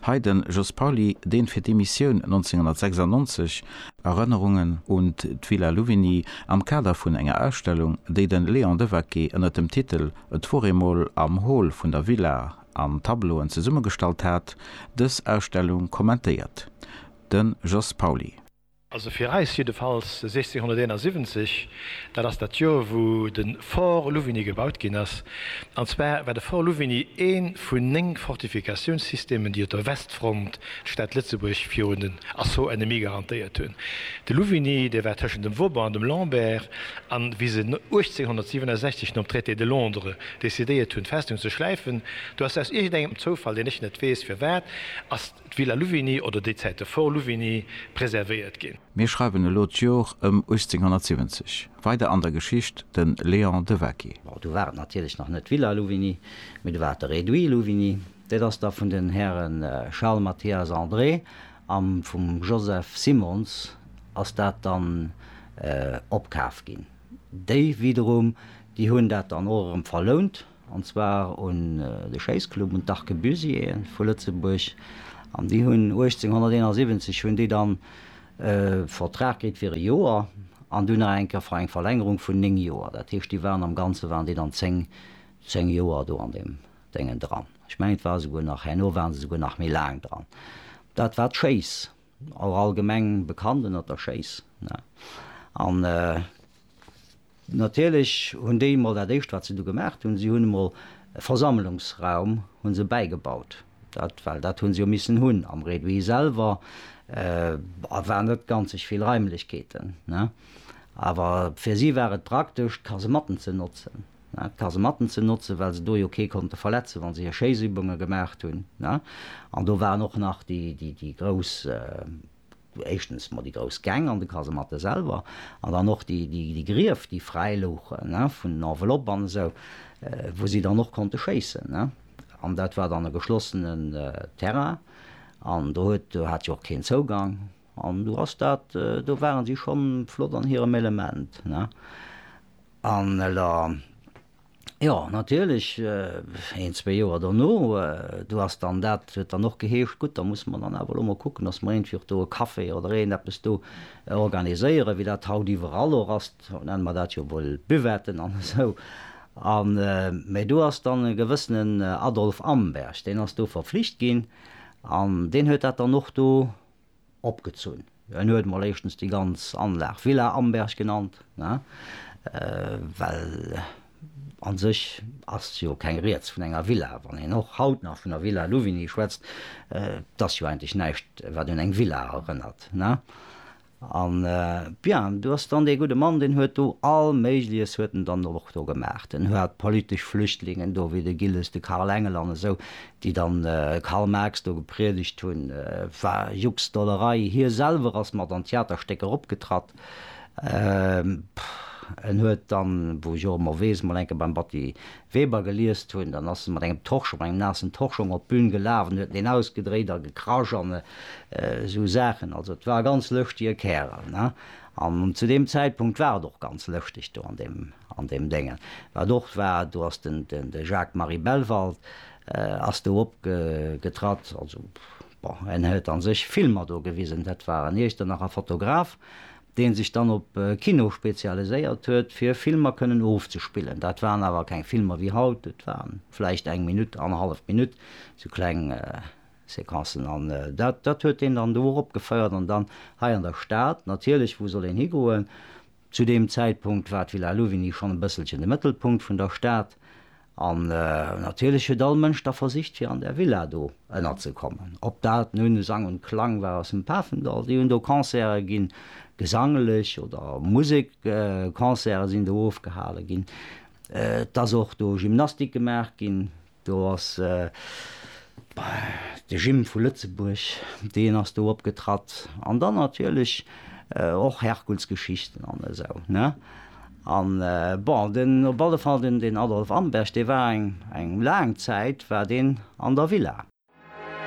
Hei den Jos Pauly, deen fir d'Emissioun 1996, Erënnerungen un d'Villa Louvigny am Kader vun enger Ausstellung, déi den Léon Devaquet ënnert dem Titel Et wor eemol am Hall vun der Villa an Tableauen zesummegestallt hat, dës Ausstellung kommentéiert. Den Jos Pauly. Also fir eis jiddefalls 1671, dat ass dat Joer wou de Fort Louvigny gebaut ginn ass. An zwar war de Fort Louvigny ee vun néng Fortifikatiounssystemen déi op der Westfront d'Stad Lëtzebuerg virun den Assaut ennemis garantéiert hunn. De Louvigny dee war tëschent dem Vauban an dem Lambert an wéi se 1867 nom Traité de Londres decidéiert hunn d'Festung ze schläifen do ass aus iergend engem Zoufall, deen ech net weess firwat, ass d'Villa Louvigny oder déi Zäit de Fort Louvigny preservéiert ginn. Mir schreiwen elo d'Jor ëm 1870. Weider an der Geschicht, de Léon Devaquet. Bon, du war et natierlech nach net d'Villa Louvigny, mee du war et de Réduit Louvigny. Dat ass da vun den Häre Charles Mathias André a vum Joseph Simons ass dat dann opkaaft ginn. Déi widerum, déi hunn dat dann och erëm verlount. an zwar un de Schéissclub, un d'Arquebusiers vu Lëtzebuerg, an déi hunn 1871 hunn déi dann e Vertrag kritt fir e Joer an dunn nach eng Kéier fir eng Verlängerung vun néng Joer. Dat heescht, déi waren am Ganze waren déi dann zéng, zéng Joer do an deem Déngen dran. Ech mengen, et war esouguer nach, herno waren se esouguer nach méi laang dran. Dat war d'Schéiss. Awer allgemeng bekannt ënnert der Schéiss. An natierlech hunn déi emol dat éischt wat se du gemaach hunn, si hunn emol e Versammlungsraum hu se bäigebaut. Dat well dat hu se jo missen hunn. Am Réduit selwer war net ganzeg vill Raimlechkeeten. Awer fir si war et praktesch ka se matten ze notzen. d'Kasematten ze notzen, well se do jo kee konnte verletzen, wa se hir Schéissübunge gemaacht hunn. An do waren och nach déi grouss, éischtens emol déi grouss Gäng an de Kasematte selwer an dann och déi Grief, déi fräi louchen vun Enveloppe an esou, wou si dann och konnte schéissen. An dat war dann e geschlossenen Terrain an do huet, do hat jo och keen Zougang an do ass dat, do ware si schonn flott an hirem Element. An elo, jo, natierlech, een, zwee Joer dono, do ass dann dat, huet dann och geheescht, gutt, da musse mer dann awer elo mol kucken, dass mer iergendwéi och do e Café oder iergend eppes do organiséieren, wéi dat haut iwwerall och ass, haut nenne mer dat jo wuel Buvetten an esou. A mä do ass dann e gewëssenen Adolf Amberg, deen ass do verpflicht ginn an deen huet dat dann och do opgezunn. En huet emol éischtens déi ganz Anlag Villa Amberg genannt, well a sech ass jo keng Rieds vun enger Villa. Wann een och haut nach vun der Villa Louvigny schwätzt, et ass jo eigentlech näischt, wat un eng Villa erënnert. An, bien, do ass dann dee gudde Mann, deen huet do all Méigliches huet en dann och do gemaach. En hat politesch Flüchtlingen do, wéi de Gilles, de Karl Engel an esou, déi dann Karl Marx do gepriedegt hunn, war Juxdollerei, hie selwer ass mat an Theaterstécker opgetratt, en huet dann, wou ech och ëmmer weess, mol eng Kéier beim Batty Weber geliest hunn, dann ass en mat engem Torschong, mat engem naassen Torschong op d'Bün gelaf an huet en ausgedréit a gekrasch an esou Saachen. Also et war e ganz lëschtige Kärel, ne? An zu deem Zäitpunkt war et och ganz lëschteg do an deem. An deem Dengen, wat och war, do ass den Jacques-Marie Bellwald ass do opgetratt. Also, bon, en huet a sech Filmer do gewisen. Dat war en Iechternacher Fotograf, dee sech dann op Kino spezialiséiert huet, fir Filmer kënnen ofzespillen. Dat waren awer keng Filmer wéi haut, et war vläicht eng Minutt, annerhallef Minutt, sou kleng Sequencen. An dat huet een dann do och opgefeiert. An dann hei an der Stad, natierlech, wou soll een higoen? Zu deem Zäitpunkt war d'Villa Louvigny schonn e bësselchen de Mëttelpunkt vun der Stad an natierlech huet all Mënsch da versicht fir an där Villa do ënnerzekommen. Ob dat nun Sang und Klang war aus dem Pafendall, déi hunn do Concerte ginn, gesanglech oder Musekconcerte sinn do ofgehale ginn, et ass och do Gymnastik gemaach ginn, Do ass de Gym vu Lëtzebuerg, deen ass do opgetratt. An dann natierlech och Herkulsgeschichten an esou, ne? An bon, den, op alle Fall den, den Adolf Amberg, dee war eng, eng laang Zäit war deen an der Villa.